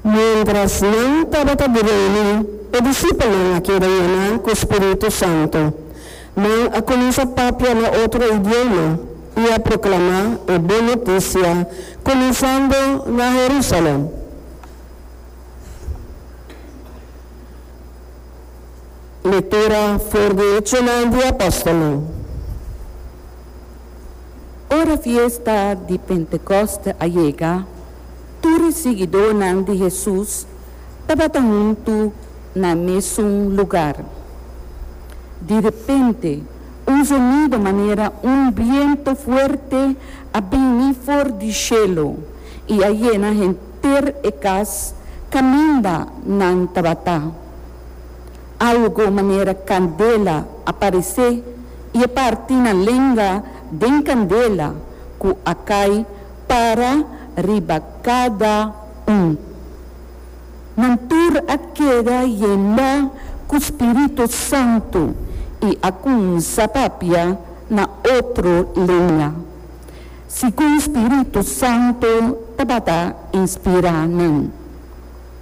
Miéntras nan tabata di reuni, e disipelnan a keda yená ku spiritu santu. Nan a kuminsá papia na otro idioma i a proklamá e bon notisia kuminsando na Herúsalèm. Lektura for di Hechonan di Apòstelnan. Ora fiesta di Pentekoste a yega, tur e siguidónan di Hesus tabata huntu na e mesun lugar. Di repente, un zonido manera un bientu fuerte a bini for di shelu i a yena henter e kas kaminda nan tabatá. Algo manera candela a parecé y e parti na lenga den candela cu a cay para riba cada un. Nan tur a keda yenda cu Spirito Santo y a cuminsa papia na otro lenga, segun Spirito Santo tabata inspira nan.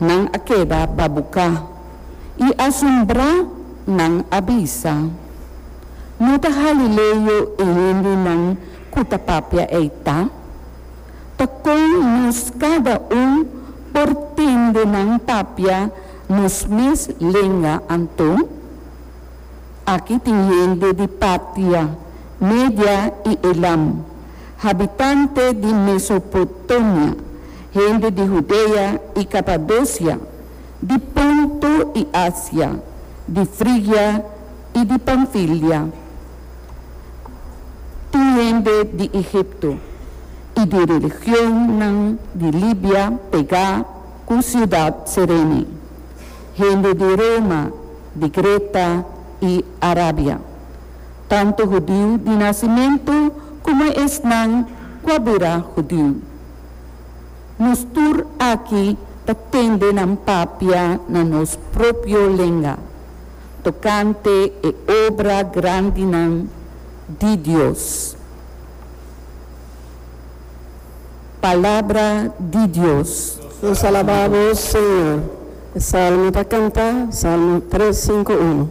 nan a keda babuká i asombrá, nan a bisa, No ta Galileo e hendenan ku ta papia ei ta? Ta kon nos kada un por tende nan papia nos mes lenga anto? Aki tin hende di Partia, Media i Elam. Habitante di Mesopotamia, hende di Hudea i Kapadosia, di Ponto i Asia, di Frigia i di Panfilia, tin hende di Egipto, i di religionnan di Libia pegá ku siudat Cirene, hende di Roma, di Greta i Arabia. tantu hudiu di nasimentu komo esnan ku a bira hudiu. Nos tur aki ta tende nan papia na nos propio lenga tokante e obra grandinan di Dios. Palabra di Dios. Nos alabá Bo, Señor. E salmo ta kantá, Salmo tres sinku unu.